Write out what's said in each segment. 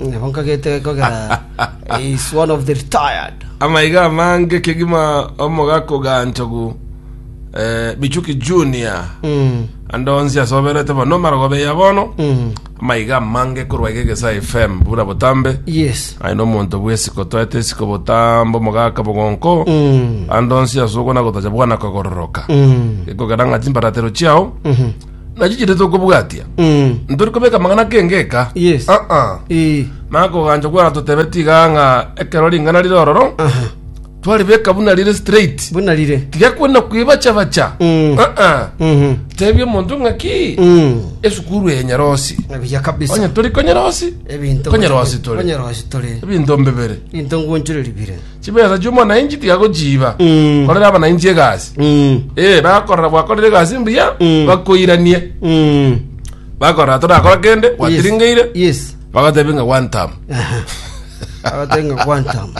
Nabo nkagete kogera is one of the retired. Amaiga amange kegima omogaka oganchogu eh, Michuki Junior Mm. ande onsi asoberete bono omarogobe ya bono Mm. amaiga amange korwa iga egesa FM bura botambe Yes. aye nomonto bw'esiko toete esiko botambo mogaka bogonko Mm. ande onsi asogwa nagotacha bwana kogororoka Mm. ekogera ng'a chimbaratero chiao Mhm. nachichire tokobwatia ntori kobeka amang'ana kengeka Yes. aa Eh, nakogancha gwaratotebetie iga ng'a ekero ring'ana rire ororo aha. twaribeka buna rire straight Buna rire. tigakwenda kwibachabacha Mm. aa Mhm. tebia omonto ng'aki Mm. esukuru eye nyerosi Nabiya kabisa. onye tori konyerosi Ebinto Konyerosi tore. Konyerosi tore. ebinto mbibere Into ngunchureri bire. Chibesa chi'omonainchi tigagochiiba Mm. korera abanainchi egasi. Mm. Eh, bakorora gwakorire egasi mbuya Mm. bakoiranie Mm. bakorora torakora kende Yes. gwatiringeire Yes. bagatebe ng'a one time Aha. Agatenga quantum.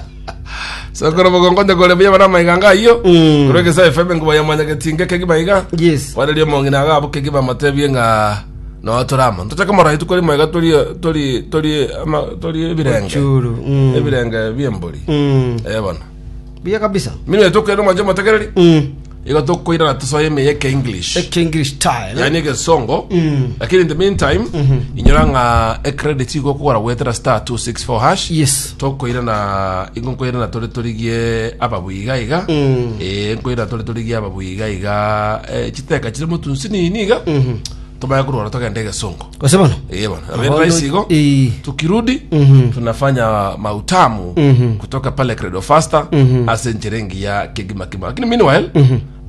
sokoro bogonkonde kore buya bara amaiga nga ayio Mm. korwa egesa efebe ngoba yamanya getinge kegi baiga Yes. kwareria omong'ina agabo kegi bamatebie ng'a no tore amo tochake morai tokore moiga tori tori tori ama tori ebirenge Ochuru, mm. ebirenge biembori Mm. eh bono Buya kabisa. mimi tokere manje motegereri Mm. igo tokoira na tosoe ime yeke english Eke English style. yani egesongo Mm. lakini in the meantime inyora ng'a ecredit igo okogora gwetera star 264 hash Yes. Tokoirana, ingo nkoirana tore torigie ababuya iga iga, eh, nkoirana tore torigie ababuya iga iga, eh, chiteka chire motunsi nini iga, tomanye korwora togende egesongo. Gose bono? Eh, bwana, Ahondo- very nice igo. Eh. tukirudi tunafanya mautamu kutoka pale credo faster ase enchera engiya kegima kima lakini meanwhile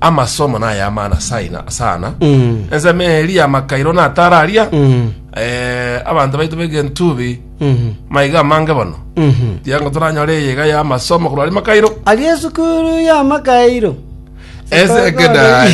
amasomo naye amana saina sana enseme eria amakairo natararia eh, abanto baito begentubi Maiga amange bono, tiga ngotoranyore eyeiga y'amasomo korwa aria makairo. Aria esukuru y'amakairo. Esekendari.